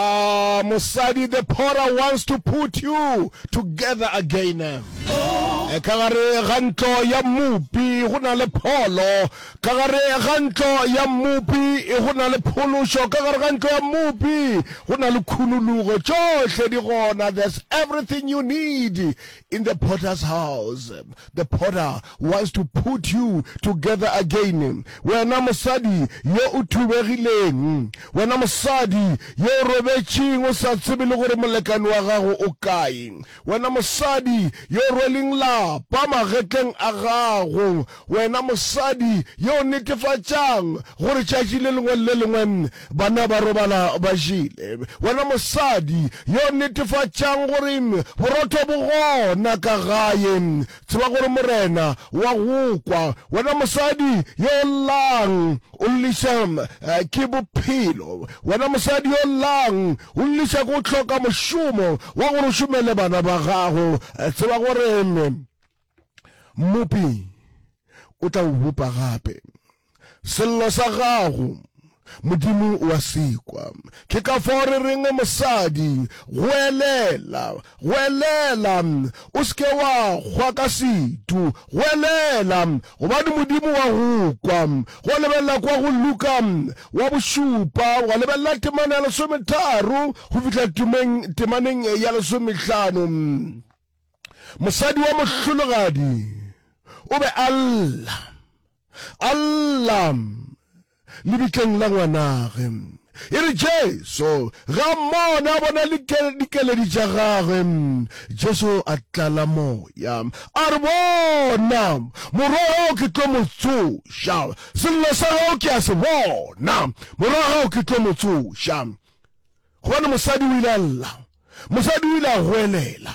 Ahh mosadi the pora wants to put you together again eh, ka gare ga ntlo ya mmupi go na le pholo ka gare ga ntlo ya mmupi eh, go na le phološo ka gare ga ntlo ya mmupi go na le khunulugo tšohle di gona there's everything you need In the potter's house, the potter wants to put you together again. Wena mosadi yo o thubegileng, wena mosadi yo o robetšeng o sa tsebe le gore molekane wa gago o kae, wena mosadi yo o rweleng lapa magetleng a gago, Wena mosadi yo o netefatšang gore tšatši le lengwe le le lengwe banna ba robala ba jele, wena mosadi yo o netefatšang gore borotho bo gona ka gae, tseba gore Morena wa go kwa. Wena mosadi yo o llang o lliša ke bophelo, wena mosadi yo o llang o lliša ke go hloka mošomo wa gore o šomele bana ba gago, tseba gore Mmopi o tla o bopa gape. Sello sa gago Modimo o a sekwa. Ke ka fao re reng mosadi, goelela, goelela, o se ke wa kgwa ka setu, goelela, gobane Modimo wa go kwa. Go lebelela kwa go Luka wa bošupa, wa lebelela temana ya lesometharo go fihla temaneng ya lesomehlano. Mosadi wa mohlologadi o be a lla, a lla lebitleng la ngwanage. E re Jesu ge a mmone, a bona dikeledi tša gagwe, Jesu a tlala moya, a re, Bona, morwa gago ke tlo mo tsoša, sello sa gago ke a se bona, morwa gago ke tlo mo tsoša. Gobane mosadi o ile a lla, mosadi o ile a goelela.